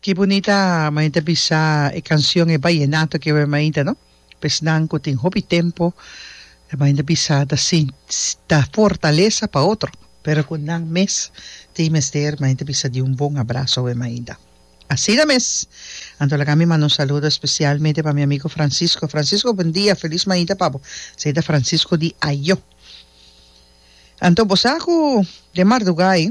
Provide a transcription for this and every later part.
Ki bunita main ta bisa e cancion e Vallenato ke we main ta no pa esnan ku tin hopi tempo main ta bisa ta ta fortalesa pa otro pero ku nan mes tin mester main ta bisa di un bon abraso we mainta asina mes anto laga mi manda un saludo especialmente pa mi amigo Francisco Francisco buen dia feliz mainta pa bo esey ta Francisco di Ayo anto bo sa ku den marduga ai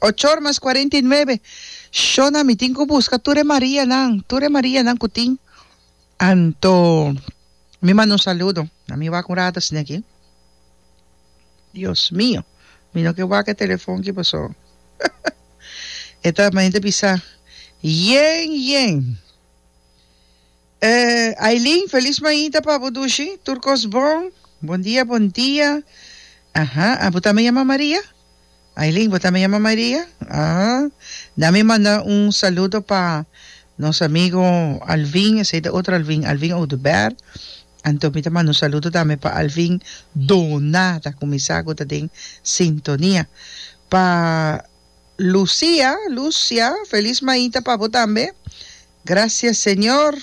Ochor mas cuarenta y nuebe shona mi tin cu busca tur e Marianan, tur e Marianan cu tin. Anto mi manda un saludo na mi wak un rato asina aki. Dios mio, mi no ke wak e telefon ki paso e ta, mi ta bisa, yen, yen. Eh Ailin felis maita pa bo dushi tur kos bon bon dia bon dia aha a bo tambe yama Maria Ailin bo tambe yama Maria ah nan mi manda un saludo pa nos amigo Alvin esey ta otro Alvin Alvin Oduber anto mi ta manda un saludo tambe pa Alvin Dona ta kumisa ku ta den sintonia pa Lucia Lucia felis maita pa bo tambe. Gracias Señor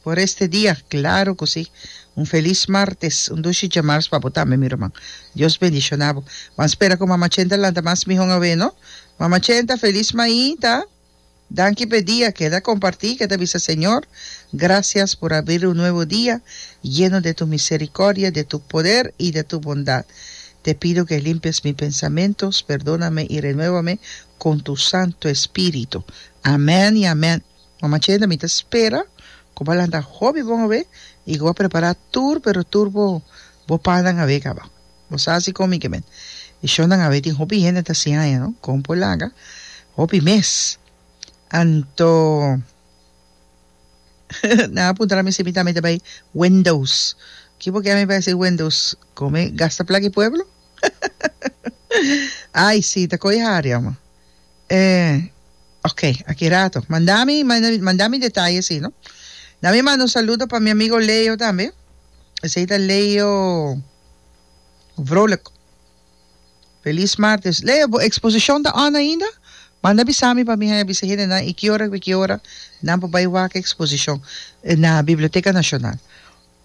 por este dia, claro cu si. Un feliz martes, un dushi djemars pa bo tambe mi ruman. Dios bendiciona bo. Ban spera cu mama Chenta lanta mas mihon awe no. Mama Chenta feliz mainta. Danki p'e dia que ta comparti, que ta bisa Señor gracias por abrir un nuevo dia yeno de tu misericordia, de tu poder y de tu bondad. Te pido que limpies mi pensamentos, perdona me y renueva me con tu Santo Espíritu. Amen y amen. Mama Chenda mi ta spera cu bo a lanta hopi bon awe y cu bo a prepara tur pero tur bo bo pannan awe caba. Bo sa si con mi ke men e shownan awe tin hopi hende ta siaña no con por laga hopi mes anto nan a puntra mi si mi tambe ta bay Wendo's. Ki bo ke ami bay hasi Wendo's? Con mi gasta plaki pueblo? Ai si, ta coi hari ama. Eh, ok, aki rato. Manda mi, manda mi detaye si no. Da mi manda un saludo pa mi amigo Leo tambe. Esey ta Leo Vrolijk. Feliz martes. Leo, bo exposition ta on ainda? Manda bisa mi pa mi haya bisa hende nan i ki ora, ki ora nan por bay wak exposition na Biblioteca Nacional.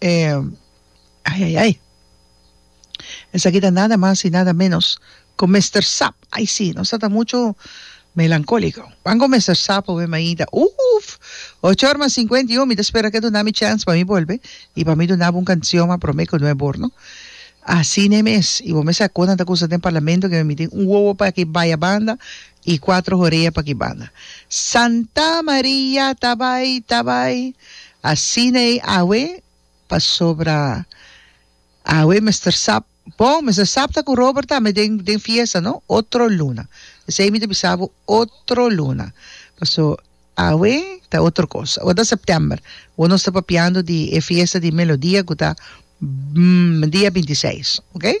E ai ai ai. Esaki ta nada mas y nada menos cu Mister Sap. Ai si, nos ta ta mucho melancolico. Pan cu Mister Sap hopi maida. Uff! Ocho or mas cincuenta y un, mi ta spera cu e duna mi chance pa mi bolbe y pa mi duna bo un cancion, ma prome cu no e bor no. Asina e mes. Y bo mester a conta anta cusa den Parlamento cu mi tin un wowo pa ki baya banda I kuatro horea pa ki banda. Santa Maria ta bai, ta bai. Asina ei awe, pasobra awe mester sap, bon, mester sap ta ku Robert ta ami den, den fiesta, no? Otro luna. Esei mi ta bisa bo, otro luna. Paso, awe ta otro kos. Awe ta sèptèmber. Bo no sta papiando di e fiesta di Melodia ku ta, mm, dia binti seis, oke?